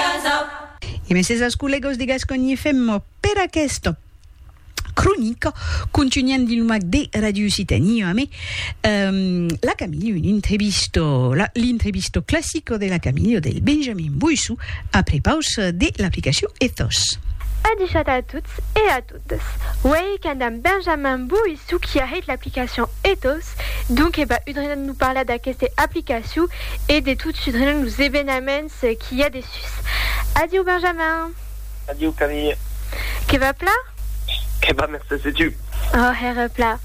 casa. E meses als collegos de Gasconha FM per aquesta cronica. Contunham dins lo mac de Radio Occitanie amé la Camille, un intrevisto, l'intrevisto classico de la Camille del Benjamin Boissou a prepaus de l'aplicacion Ethos. A dichat a tots e a totes. Ethos. Uèi qu'an damb Benjamin Boy çò qui a hèit l'aplicacion Ethos, donc eba udrenon lo parlar d'aqueste aplicacion e de tot sudrenon los ebenaments qui i a dessús. Adiu Benjamin. Adiu Camille. Que va pla? Que va mercés e tu? Ò hèra pla.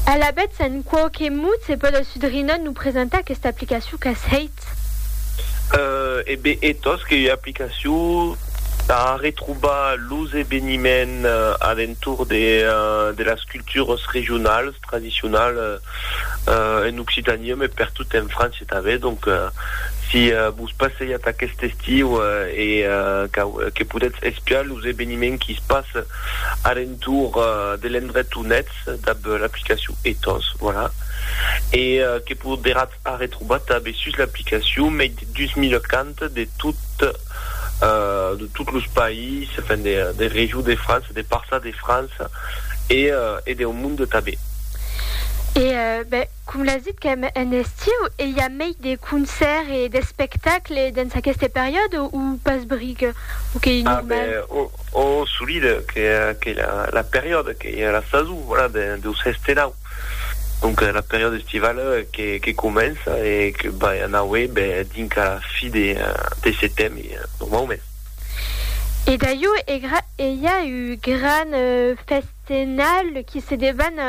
Alavetz en quauque mot se pòde sudrenon lo presentar aquesta aplicacion qu'as hèit? Internet. E be e tos que ua aplicacion tà retrobar los eveniments a l'entorn de las cultures regionales, tradicionales en Occitania, mès pertot en França tanben. Donc, si vos passejatz aquest estiu e que podètz espiar los eveniments qu'i se passen a l'entorn de l'endret on ètz dab l'aplicacion e tos, voilà. E que poderatz A retrobar tanben sus l'aplicacion mei de 2040 de tot los païses, enfin de regions de França, de parças de França e deu monde tanben. E ben, com l'as dit qu'èm en estiu, e i a mei de concèrts e d'espectacles dens aqueste periòde o pas bric? O qu'ei normal? A ben, o, solide, qu'ei la periòde, qu'ei la sason, voilà, deus hèster là. Donc la periòda estivala que comença e que vai anaué dinca la fi de setembre normaument. E daieu egra e i a un gran festenal qui se devan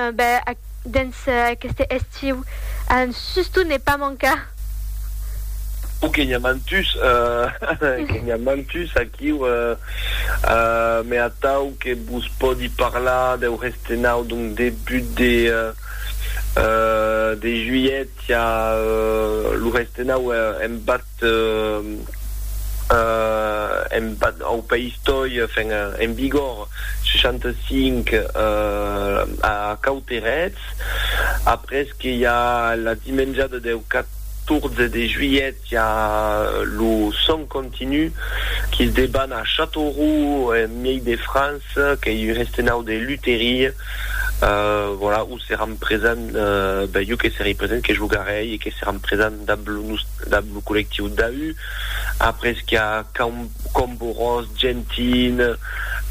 dens aqueste estiu a un suston ne pas mancar. O que n'i a mantus, que n'i a mantus aquiu, me atau que vos pòdi parlar deu. De nau, donc debut de de juilhet, i a lo res de nau en bat en bat au País Toi, enfin en vigor 65 a Cauterets, après que i a la dimenjada deu 14 de juilhet Qu'i a lo sòn continu qui's deban a Châteauroux, en miei de France, qu'ei un restenau de luteria, voilà, où seràn presents, ben jo que serei present, que jogarei e que seràn presents damb lo nus, damb lo collectiu DAU. Après qu'i a Cam, Camborós, Gentin,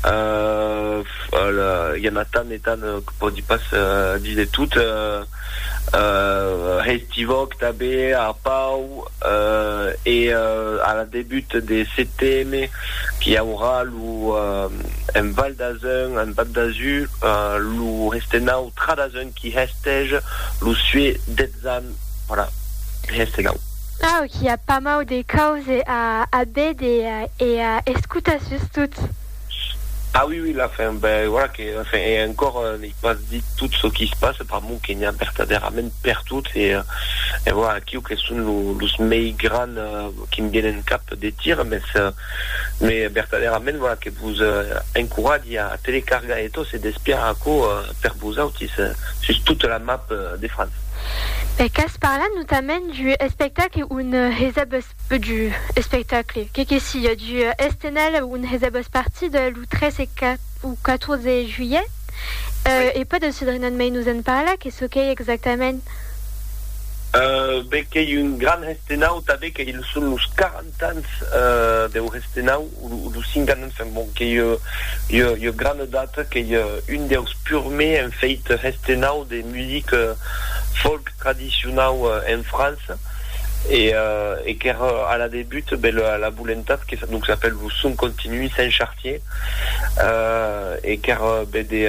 i a na tant e tant que pòdi pas díser tot. hestivòc tanben a Pau e a la debut de CTM qu'i aurà lo en Val d'Azun, en Val d'Azur, lo hestenau Tra d'Azun qui hestèj lo sué detzan voilà hestenau. Au qu'i a pas mau de cause a a béder e a escutar sustot. Ah oui oui la fin ben voilà que la fin et encore n'ai pas dit tout ce qui se passe par mon que n'hi a vertadèrament per tot et et voilà aquiu que son lo los mei gran qui me vienen cap de tir mes me vertadèrament voilà que vos encoratge a telecargar e tot e d'espiar aquo per vosautis sus tota la map de France. E qu'as parlat notament du espectacle un heseb peu du espectacle, que que siá, du Estenal on hè's abas partit lo 3 e o 14 juilhet, e pas de Cedrinon mei nos en parla, que çò qu'ei exactament? Be qu'ei un gran hestenau, tanben que ils son los 40 ans deu hestenau. Lo Singanon fen bon qu'ei ua grana data qu'ei un deus purmei en feit hestenau de music folk tradicionau en França e qu'ère a la debut be la volentat que donc s'apèl lo Son Continu Saint-Chartier e qu'ère be de